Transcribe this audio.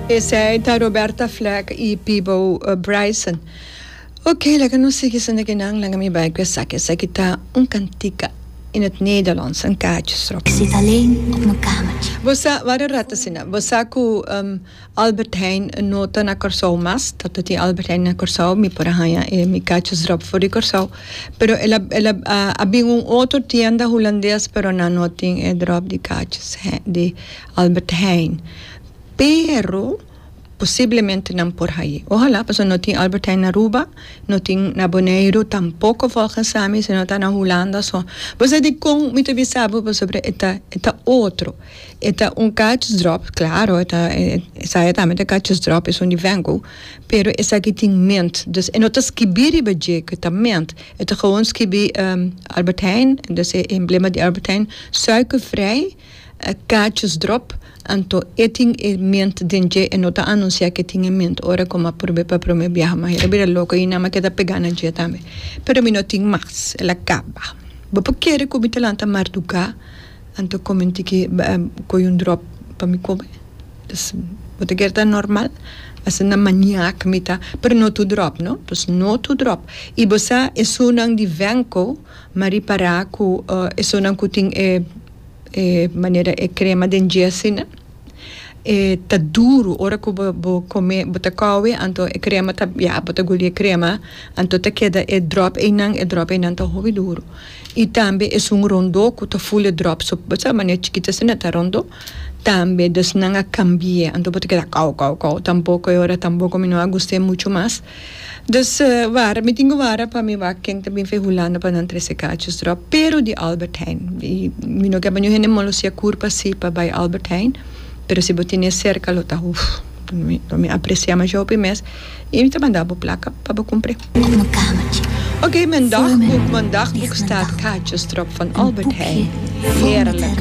Esei ta Roberta Fleck y Peabo Bryson. Ok laga nos sigui esnan aki nan laga mi bay cu esaki esaki ta un cantica in het Nederlands een kaartje strop. Ik zit alleen op mijn kamertje. Bo sa, wara e rat asina, bo sa cu Albert Heijn no ta na Corsou mas, ta ta tin Albert Heijn na Corsou, mi por a hanja e mi kaartjes drop for di Corsou, pero el a el a bin un otro tienda Hulandes pero nan no tin e drop di kaartjes di. Albert Heijn, pero posiblemente nan por ha'i. Ohala, pasobra no tin Albert Heijn na Aruba, no tin na Boneiru tampoko volgens ami, sino ta na Hulanda so. Bo sa dikon mi ta bisa bo? Pasobra e ta, e ta otro. E ta un kach dròp, klaro, e ta, esaya tambe ta kach dròp, esun di Vengo, pero esaki tin mint. Dus e no ta skibí riba dje ku e ta mint. E ta gewoon skibí Albert Heijn, dus e emblema di Albert Heijn, suikervrij. E kachos drop, anto e tin e ment den dje, e no ta anunsia ke tin e ment ora komo a probe pa prome biaha, ma hera bira loko i nan ma ke ta pega na dje tambe. Pero mi no tin mas, el a kaba. Bo por kere ku mi ta lanta marduga, anto kome un tiki koi un drop pa mi kome? Pues bo ta kere ta normal? Asina maniak mi ta, pero no tur drop no, pues no tur drop. I bo sa esunnan di venko. M'a ripará ku esunnan ku tin e e manera e krema den djèsin e ta duru ora ku bo bo kome bo ta kòwe anto e krema ta ya bo ta guli e krema anto ta keda e dròp einan e dròp einan ta hopi duru i tambe esun rondó ku ta ful e dròp so bo sa manera chikit asina ta rondó tambe dus nan a kambié anto bo ta keda kòw kòw kòw tampoco e ora tampoco mi no a gust'é muchu mas. Dus wara mi tin ku wara pa mi wak ken ta bin fe Hulanda pa nan trese kachos dròp, pero di Albert Heijn. I mi no keba niun hende molosia kurpa si pa bai Albert Heijn, pero si bo tene serka lo ta uf, lo mi apresiá masha hopi mes i mi ta manda bo plaka pa bo kumpr'é. Ok, men dagbuk, men dagbuk staat kachos dròp van Albert Heijn. Heerlijk.